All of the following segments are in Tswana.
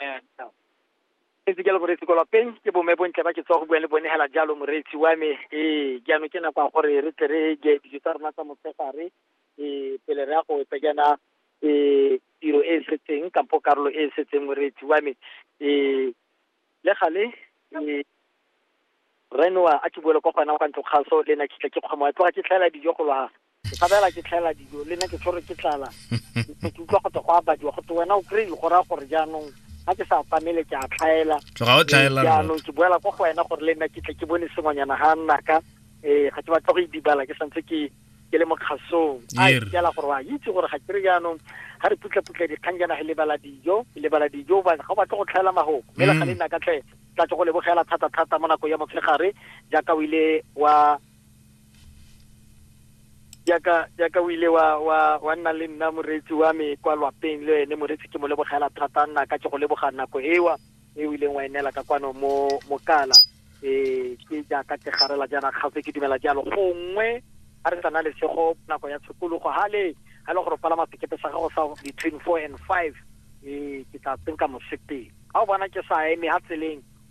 Eh, no. ntse ke le moreetsi kwa lapeng ke bome bontle ba ke tswa go bua le bone hela jalo moreetsi wa me ee jaanong ke nako ya gore re tle re je dijo tsa rona tsa motshegare ee pele re ya go etsa jaana ee tiro e e setseng kampo karolo e e setseng moreetsi wa me ee le gale ee renoa a ke buele kwa gona kwa ntlo kgaso le na kitla ke kgoma tloga ke tlhaela dijo go lwa ke tshabela ke tlhaela dijo le nna ke tshwere ke tlala ke utlwa go te go abadiwa go te wena o kry-e go raya gore jaanong ga ke sa atamele ke a tlhaela tloga o tlhaela jaanong ke boela kwa go wena gore le nna ke tle ke bone sengwanyana ga nnaka um ga ke batla go e dibala ke santse ke ke le mo kgasong a ikela gore wa itse gore ga kere jaanong ga re putlaputla dikgang jana ge lebala dijo lebala dijo ga o batle go tlhaela magoko mme le ga le nna ka tle tla tse go lebogela thata-thata mo nako ya motshegare jaaka o ile wa yaka yaka o ile wa wa wa nna le nna moreetsi wa me kwa lwapeng le ene moreetsi ke mo lebogela thata nna ka ke go leboga nako ewa e o ileng wa e neela ka kwano mo mokala um ke jaaka ke garela jaana kgaotse ke dumela jalo gongwe a re tsana lesego nako ya tshokologo hale ga e le gore o palama sekepe sa gago sa between four and five um ke tla tsenka mosepele ga o bona ke sa eme ga tseleng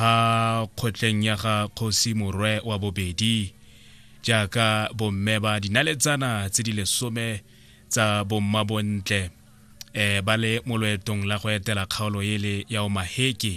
ha kgotleng ya ga kgosi morwe wa bobedi jaaka bomme ba dinaletsana tse di lesome tsa bomma bontle eh ba le mo loetong la go etela kgaolo ele ya omaheke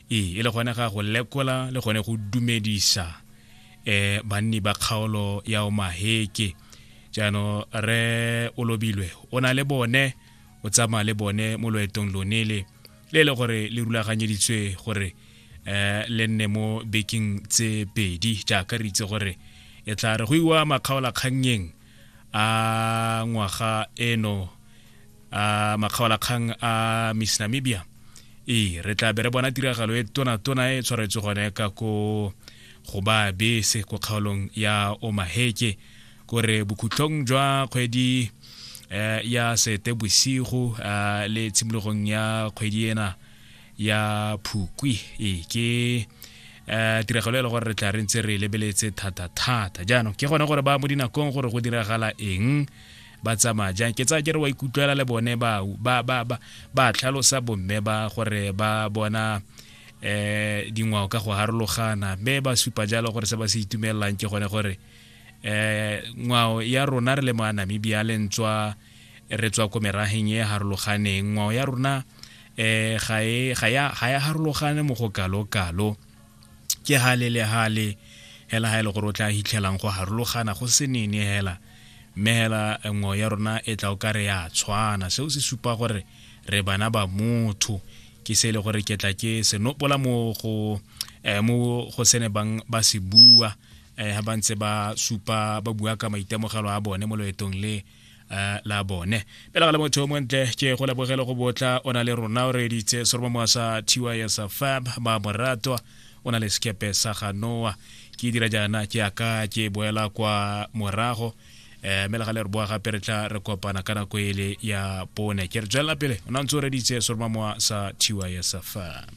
e e le gone ga go lekola le gone go dumedisa eh banni ba kgaolo ya omaheke jaanong re o lobilwe o na le bone o tsamaya le bone mo loetong lonele le e le gore le rulaganyeditswe gore um le nne mo bekeng tse pedi jaaka re itse gore e tla re go iwa makgaolakgannyeng a ngwaga eno a makgaolakgang a miss namibia ee re tla be re bona tiragalo e tonatona e tshwaretswe gone ka ko go ba bese ko kgaolong ya omaheke kore bokhutlong jwa kgwedi eh, ya sete bosigo eh, le tshimologong ya kgwedi ena ya phukwi e ke eh, tiragalo e le gore re tla re ntse re lebeletse thata-thata jaanong ke gone gore ba mo dinakong gore go diragala eng ba tsamaya jang ke tsaya ke re wa ikutlwela le bone ba ba ba ba ba tlhalosa bomme ba gore ba bona eh dingwao ka go harologana mme ba supa jalo gore se ba se itumellang ke gone gore um ngwao ya rona re le mo a namibia le ntswa re tswa ko merageng e harologaneng ngwao ya rona um ga e harologane mo go kalo-kalo ke hale le hale hela ha e le gore o tla hitlhelang go harologana go se nene hela mme hela eh, ngwao ya rona e tla o ka re ya tshwana seo se supa gore re bana ba motho ke se e le gore ke tla ke senopola mo go eh, mo go sene bang ba se bua eh, ha ba ntse ba supa ba bua ka maitemogelo a bone mo loetong le eh, la bone pela ga le motho mo ntle ke go lebogele go botla o na le rona o reditse soromo moa sa tys fab ba moratwa o na le sekepe sa ga noa ke dira jaana ke aka ke boela kwa morago eh mele ga le re boa gape re tla re kopana ka nako ele ya pone ke re tswelela pele o na ntse o reditse soromo moa sa tys fab